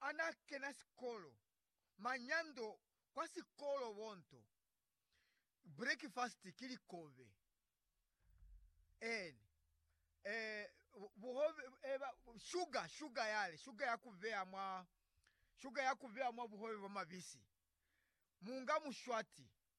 ana kena sikolo, manyando kwa sikolo bonto breakfast ki likobe en eh buhobe eba sugar sugar yale sugar ya kubeya mwa sugar ya kubeya mwa buhobe bwa mabisi munga mushwati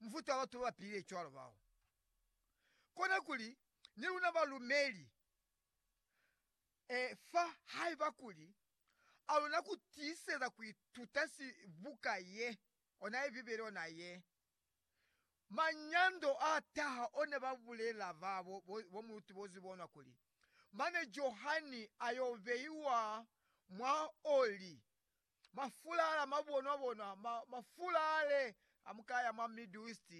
mufuta wa batu babapilile cwalo bao. Kona kuli ni luna balumeli, e, fa haiba kuli a luna kutiiseza kuituta si, buka ye, ona ye Bibele ona ye. Manyando a taha one ba bulela ba bo, bo, bo muluti bo zibonwa kuli, Mane Johani a yo beiwa mwa oli, Mafula ala mabonwa-bonwa, ma, mafula ale amukaya mwa Middle East,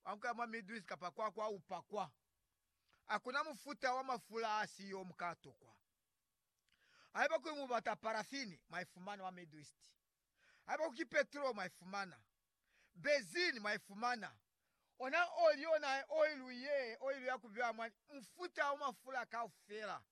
amukaya mwa Middle East kapa kwa, kwa upakwa. Hakuna mufuta wa mafula asiyo mukatokwa. Haiba kuli mubata paraffin, mwaifumana mwa Middle East. Haiba ku ki petrol, mwaifumana. Benzene, mwaifumana. Ona oli, ona oil ye, oil ya kubya mwa, mufuta wa mafula kaufela.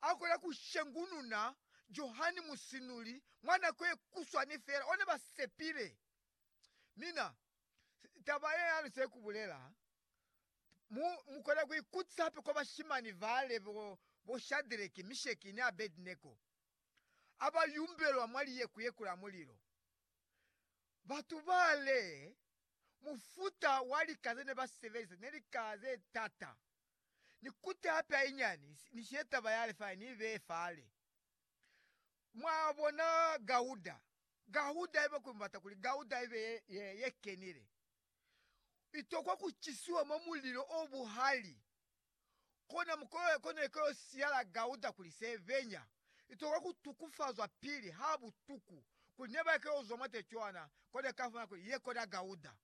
Akwela ku shengununa Johani Musinuli mwa nako ye kuswani fela, one ba sepile. Mina, taba ye ya luse ku bulela, mu, mu kona ku ikutisa hape kwa bashimani bale bo, bo Shadreki, Misheki, ni Abednego, aba yumbelwa mwa liyeku ye kula mulilo. Batu bale, mufuta wa lika zene ba sebelisa ne lika ze tata. ni kuti hape hainyani ni she taba ya Lifai ni ibeye fale. Mwabona gauda, gauda haiba kuli mubata kuli gauda ibe ye, ye, ye kenile, itokwa ku cisiwa mwa mulilo o buhali. Kona mukolole kona iko yo siyala gauda kuli se benya, itokwa ku tukufazwa pili ha butuku, kuli neba iko yo zwa mwate cwana, kona ikafumana kuli ye kona gauda.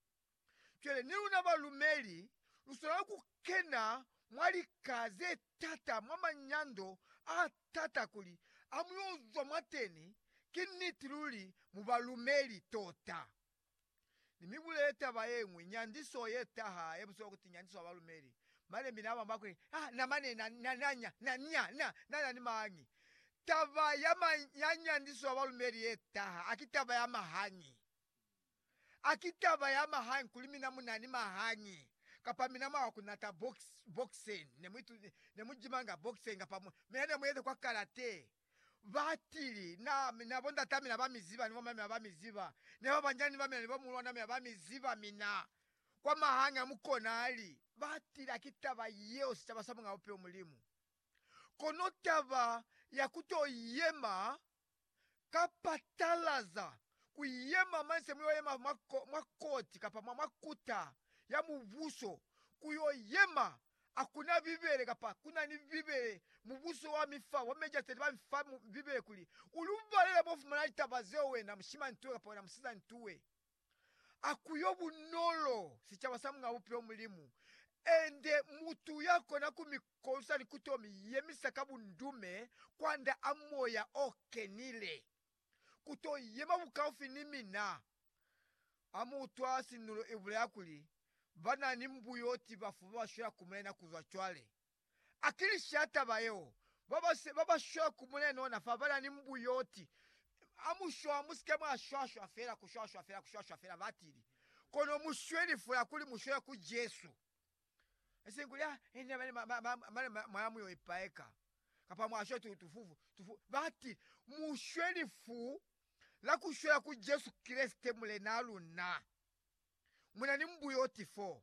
Cwale ni luna balumeli lu swanela ku kena mwa lika ze t'ata, mwa manyando a t'ata, kuli ha mu y'o zwa mwateni, ki niti luli mu balumeli tota. Ni mi bulele taba ye ñwi, nyandiso ye taha, ye mu swanela ku ti nyandiso ya balumeli, Malembe n'a bamba kuli, Ha na mane na, na, na nya, na nya, na, na na ni mañi? Taba ya ma, ya nyandiso ya balumeli ye taha, ha ki taba ya mahañi. A ki taba ya mahañi kuli mina mu na ni mahañi, kapa mina mwa kunata box, boxen, ne mu ituti, ne mu jimanga boxen, kapa mu, mina ne mu yezi kwa karate? Ba tili, Na, na bondat'a mina ba mi ziba, ni bom'a mina ba mi ziba, ni babanjani ba mina ni bomulwan'a mina ba mi ziba mina. Kwa mahañi a mu konali. Ba tili, A ki taba yeo sicaba sa Muñ'a Bupilo Mulimu? Kono taba ya ku t'o yema ka patalaza ku yema manse mu yo yema mwa, mwa Koti kapa mwa, mwa Kuta ya Mubuso, ku yo yema, a ku na Bibele, kapa ku na ni Bibele, mubuso wa mi fa, wa mejaseti ba mi fa Bibele kuli u lu balele mo fumana litaba zeo wena mushimantuwe kapa wena musizantuwe. a kuyo bunolo sicaba sa Muñ'a Bupilo Mulimu, ende mutu ya kona ku mi kosa ni ku to mi yemisa ka bundume kwanda a Moya o Kenile, ku to yema bukaufi ni mina. A Mu utwa sinulo i bulela kuli, Ba na ni mbuyoti bafu ba ba shwela ku Mulena ku zwa cwale. Akilisia taba yeo, babase babashwe ku Mulena ona fapana ni mbu yoti amushwa. Musike mwashwashwa fela, kushwashwa fela, kushwashwa fela, batili, kono mushwe lifula kuli mushwele ku Jesu. Isiñi kuli, Ah, ini nabani ma, ma, ma, mane ma, mwaya muyo ipaeka, kapa mwashwe tu, tufufu, tufu, batili. Mushwe lifu la kushwela ku Jesu Kreste, Mulenaa luna. Muna ni mbu yoti foo.